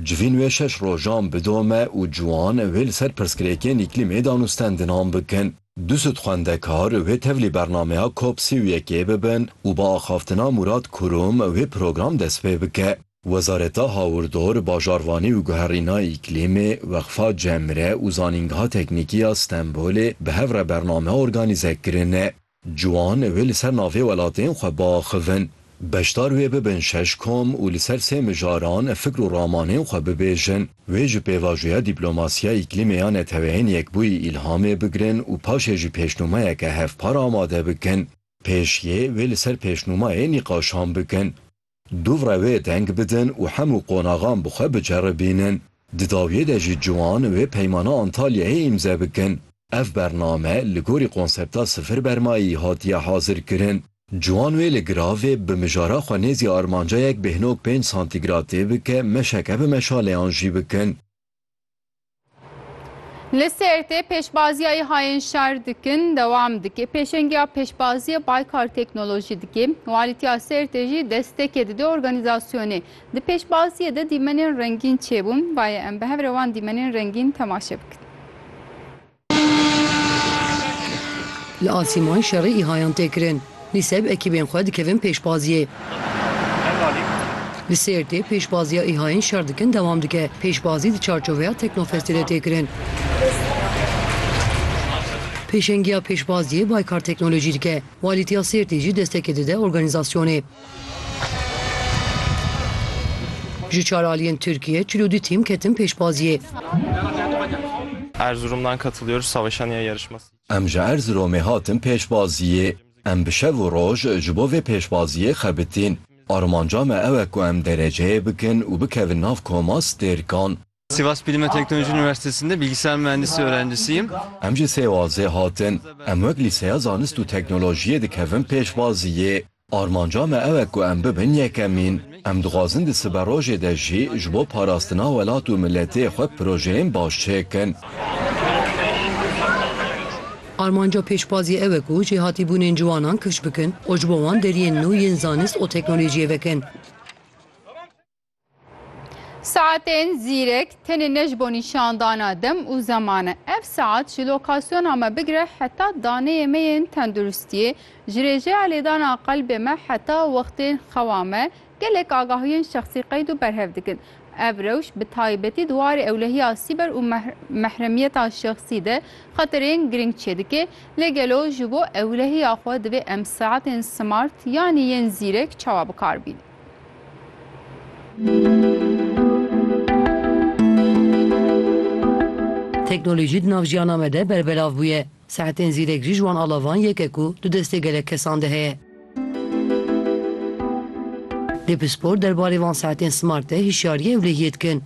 Civîn wê şeş rojan bidome û ciwan wê li ser pirsgirêkên îklîmê danûstendinan bikin. Du sed xwendekar wê tevlî bernameya Cop sî û yekê bibin û bi axaftina Mûrat Kurum wê program dest pê bike. Wezareta Hawirdor, Bajarvanî û Guherîna Îklîmê, Weqfa Cemre û Zanîngeha Teknîkî ya Stenbolê bi hev re bername organîze kirine. Ciwan wê li ser navê welatên xwe biaxivin, beşdar wê bibin şeş kom û li ser sê mijaran fikr û ramanên xwe bibêjin. Wê ji pêvajoya dîplomasiya îklîmê ya Neteweyên Yekbûyî îlhamê bigirin û paşê jî pêşnûmeyeke hevpar amade bikin. Pêşiyê wê li ser pêşnûmayê nîqaşan bikin. Duvre wê deng bidin û hemû qonaxan bi xwe biceribînin. Di dawiyê de jî ciwan wê Peymana Antalyayê îmze bikin. Ev bername li gorî konsepta sifir bermayî hatiye hazirkirin. Ciwan wê li giravê bi mijara xwe nêzî armanca yek bêhnog pênc santîgratê bike meşeke bi meşaleyan jî bikin. Li Sêrtê pêşbaziya îhayên şer dikin dewam dike. Pêşengiya pêşbaziya Baykar Teknolojî dike. Walîtiya Sêrtê jî destekê dide organîzasyonê. Di pêşbaziyê de dîmenên rengîn çêbûn. Ba yê em bi hev re wan dîmenên rengîn temaşe bikin. Li Asîmayî şerê îhayan tê kirin. Li seb ekîbên xwe dikevin pêşbaziyê. Li Sêrtê pêşbaziya îhayên şer dikin dewam dike. Pêşbazî di çarçoveya Teknofestê de tê kirin. Pêşengiya pêşbaziyê Baykar Teknolojî dike. Walîtiya Sêrtê jî destekê dide organîzasyonê. Ji çar aliyên Tirkiyê çil û du tîm ketin pêşbaziyê. Em ji Erziromê hatin pêşbaziyê. Em bi şev û roj ji bo vê pêşbaziyê xebitîn. Armanca me ew e ku em dereceyê bikin û bikevin nav koma stêrkan. Sivas Bilim ve Teknoloji Üniversitesi'nde bilgisayar mühendisi öğrencisiyim. Em ji Sêwazê hatin. Em wek Lîseya Zanist û Teknolojiyê dikevin pêşwaziyê. Armanca me ew e ku em bibin yekemîn. Em dixwazin di siberojê de jî ji bo parastina welat û miletê xwe projeyên baş çêkin. Armanca pêşwaziyê ew e ku jêhatîbûnên ciwanan kifş bikin û ji bo wan deriyên nû yên zanist û teknolojiyê vekin. Saetên zîrek tenê ne ji bo nîşandana dem û zeman e. Ev saet ji lokasyona me bigire heta daneyê me yên tenduristiyê, ji rêjeya lêdana qelbê me heta wextên xewa me gelek agahiyên şexsî qeyd û berhev dikin. Ev rewş bi taybetî di warê ewlehiya sîber û mehremiyeta şexsî de xeterên girîng çêdike, lê gelo ji bo ewlehiya xwe divê em saetên smart yanî yên zîrek çawa bikar bînin? Teknolojî di nav jiyana me de berbelav bûye. Saetên zîrek jî ji wan alavan yek e ku di destê gelek kesan de heye. Depspor derbarê van saetên smart de hişyariyê ewlehiyê dikin.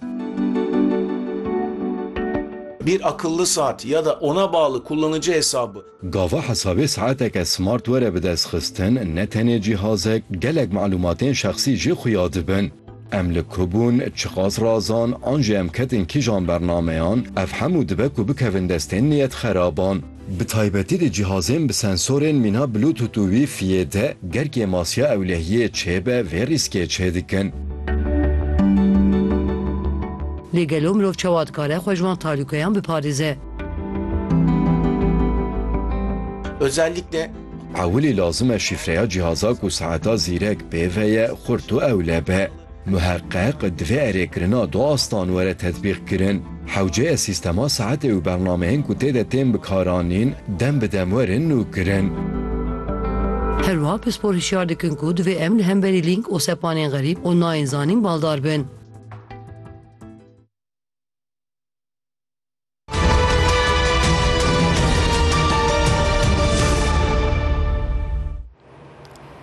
Bir akıllı saat ya da ona bağlı kullanıcı hesabı. Gava hesabê saeteke smart were bidestxistin ne tenê cîhazek, gelek malûmatên şexsî jî xuya dibin. Em li ku bûn, çiqas razan an jî em ketin kîjan bernameyan, ev hemû dibe ku bikevin destên niyetxeraban. Bi taybetî di cîhazên bi sensorên mîna Bluetooth û Wi-Fiyê de, ger kêmasiya ewlehiyê çêbe vê rîskê çêdikin. Lê gelo mirov çawa dikare xwe ji wan talûkeyan biparêze? Özellikle Ewilî lazim e şîfreya cîhaza ku saeta zîrek pê ve ye xurt û ewle be. Muheqeq divê erê kirina du astan were tetbîqkirin. Hewceye sîstema saetê û bernameyên ku tê de tên bikaranîn dem bi dem werin nûkirin. Her wiha pispor hişyar dikin ku divê em li hemberî lînk û sepanên xerîb û nayên zanîn baldar bin.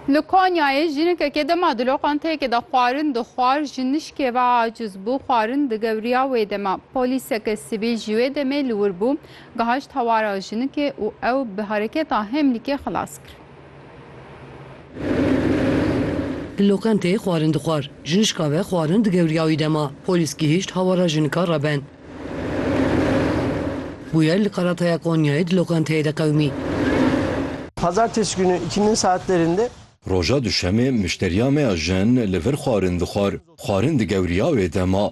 Li Konyayê jinekekê dema di loqanteyekê de xwarin dixwar ji nişkê ve aciz bû, xwarin digewriya wê dema. Polîseke sivîl ji wê demê li wir bû, gihişt hewara jinikê û ew bi hereketa hemlîkê xilas kir. Di loqenteyê xwarin dixwar. Jinişka ve xwarin digewriya wî dema polîs gihîşt hawara jinika Reben. Bûyer li Karataya Konyayê di loqenteyê de qewimî. Pazartesi günü ikindin saatlerinde. Roja Duşemê mişteriya me ya jin li vir xwarin dixwar. Xwarin digewriya wê dema.